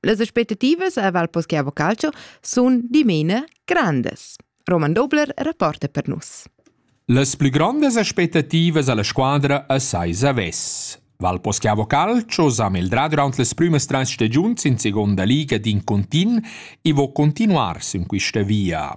Las aspettativas a Val Poschiavo Calcio sun dimena grandas. Roman Dobler rapporta per nus. Las plü grandas aspettativas alla squadra a Saisa Ves. Val Poschiavo Calcio s'ha meldrà durant las prümas trais stagiuns in seconda liga d'in contint e vo continuar sün quista via.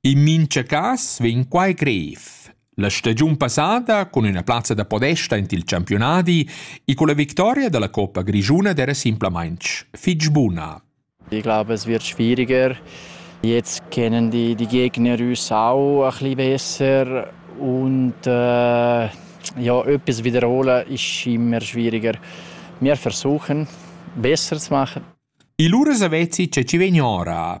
In mincha cas vegn quai grev. La stagiun passada cun üna plazza da podesta int il campiunadi e culla victoria da la Coppa grischuna d'eira simplamaing fich buna. Ich glaube, es wird schwieriger. Jetzt kennen die, die Gegner uns auch ein bisschen besser und äh, ja, etwas wiederholen ist immer schwieriger. Wir versuchen, besser zu machen. E lura savezi che ci vegn ora.